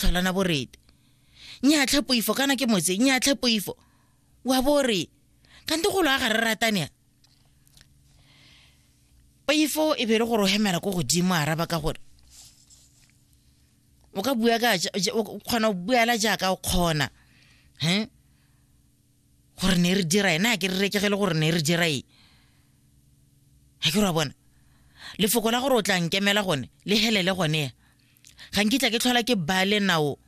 tlholana borete nyatlhe poifo kana ke motse nyatlhe poifo wa bore kante golo a ga re ratane poifo e be le gore o hemela ko godimo a araba ka gore o ka bua ka o kgona go buela jaaka o kgona he gore ne re dira ena ke re rekegele gore ne re dira e ga ke ra bona lefoko la gore o tla nkemela gone le helele gone ga nkitla ke tlhola ke bale nao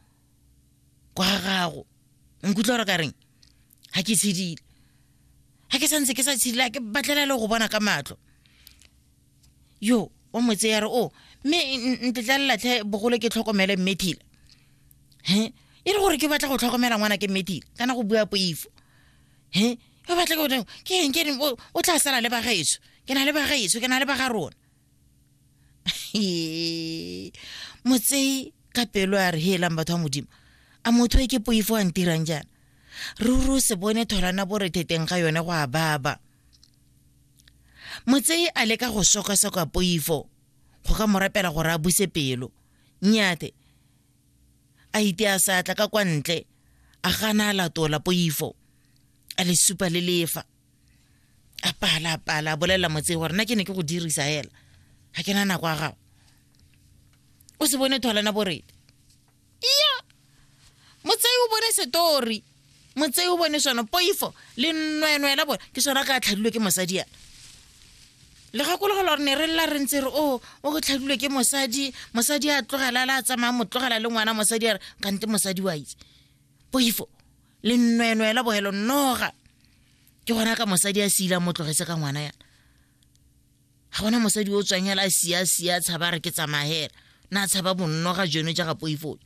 kwa ga gago nkutlwa gore ka reng ga ke tshedile ga ke santse ke sa tshedile ke batlela le go bona ka matlho yo wa motse ya re o oh, mme ntetla lelatlhe bogolo ke tlhokomele mmethile he e le gore ke batla go tlhokomela ngwana ke mmethile kana go bua poifo he ke batla ke ke eng ke o tla sala le bagaetso ke na le bagaetso ke na le baga rona Ee, motsei ka pelo a re heelang batho ba modimo a motho e ke poifo a ntirang jaana ruri o se bone tholana bo retheteng ga yone go a baba motsei a leka go sokasoka poifo go ka mo rapela gore a buse pelo nnyate a ite a sa tla ka kwa ntle a gana a latola poifo a le supa le lefa a pala a pala a bolelela motse gore nna ke ne ke go dirisa hela ga ke na nako a gago o se bone thwalana boredi iya motsei o bone setori motsei o bone sone poifo le nnwenwe la bone ke sone ka tlhadilwe ke mosadi yana le gakologo gore ne re lela re ntse re o oh, o go tlhadilwe ke mosadi mosadi a tlogela le a tsamaya mo tlogela le ngwana mosadi a re kante mosadi wa itse poifo lennwenwe la bogelo noga ke gona ka mosadi a seila mo tlogetse ka ngwana yana ga gona mosadi o tswang hela a sia sia tshaba re ke tsamagela na tshaba bonnoga jono jaga poifoo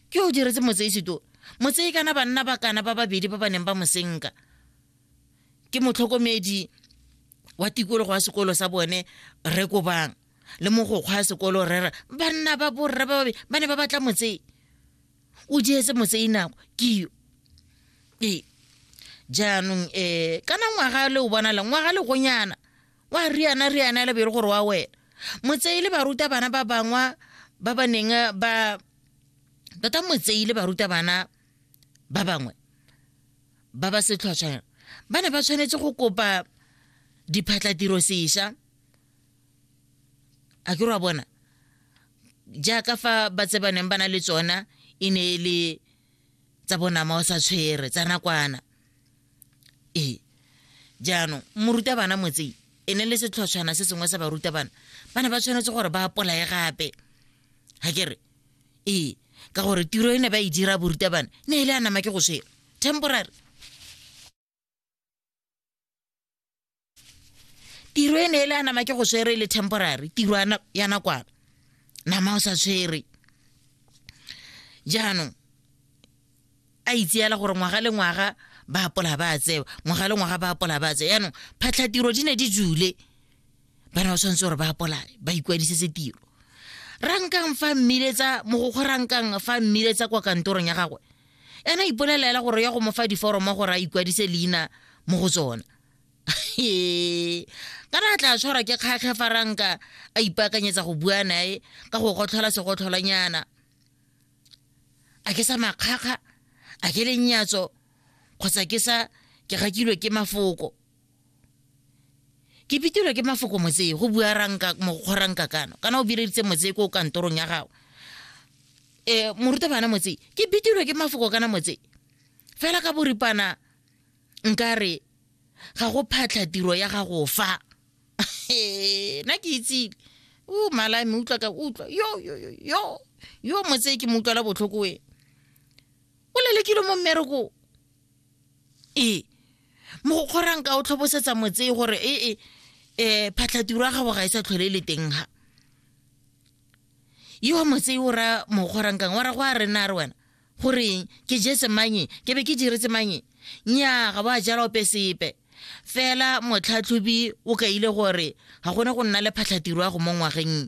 ke o diretse motsei seto motsei kana banna ba kana ba babedi ba ba neng ba mosenka ke motlhokomedi wa tikologo wa sekolo sa bone re kobang le mogokgwa ya sekolo rera banna ba borre ba babedi ba ne ba batla motsei o jeetse motsei nako keo ee jaanong um kana ngwaga le o bona le ngwaga le gonyana wa riana riana e le bere gore wa wena motsei le baruta bana ba bangwa ba ba neng ba tota motsei le baruta bana ba bangwe ba ba setlhwatlhwana ba ne ba tshwanetse go kopa diphatlatiro sesha a ke re wa bona jaaka fa ba tse ba neng ba na le tsona e ne e le tsa bonama o sa tshwere tsa nakwana ee jaanong morutabana motsei e ne le setlhotshwana se sengwe sa barutabana ba ne ba tshwanetse gore ba apolae gape ga ke re ee ka gore tiro e ne ba e dira borutabana ne e le a nama ke go swela temporary tiro e ne e le a nama ke go swere le temporary tiro ya nakwana nama o sa tshwere jaanong a itseela gore ngwaga le ngwaga ba apola ba tsewa ngwaga le ngwaga ba apola ba tsewa yaanong phatlhatiro di ne di jule bana ba tshwanetse gore ba apola ba ikwadisetse tiro rankang fa mmiletsa mogokgo rankang fa mmiletsa kwa kantorong ya gagwe ena a ipolelela hela gore ya go mo fa diforomo gore a ikwadise leina mo go tsona ka re a tla tshwarwa ke kgakge fa ranka a ipaakanyetsa go bua nae ka go gotlhola segotlholanyana a ke sa makgakga a ke lenyatso kgotsa ke sa ke gakilwe ke mafoko ke pitilwe ke mafoko motsee go bua ranka mokgoranka kano kana o bireditse motsee ko kantorong ya gago eh morutabana motsee ke bitilwe ke mafoko kana motsee fela ka boripana nkare ga go phatlha tiro ya gago fa na ke itsile o mala me utlwa ka utlwa yo yo yo yo yo motsee ke mo utlwela botlhoko e o lelekile mo mmereko ee mogokgo ranka o tlhobosetsa motse gore ee um e, phatlhatiro ya gago ga e sa tlhole e le teng ga yo wa motse o ra mogokgo rankang wa ra go a rena re wena goreng ke jetse manye ke be ke diretse manye nya ga ba jala ope sepe fela motlhatlhobi o kaile gore ga gone go nna le phatlhatiro ya go mo ngwageng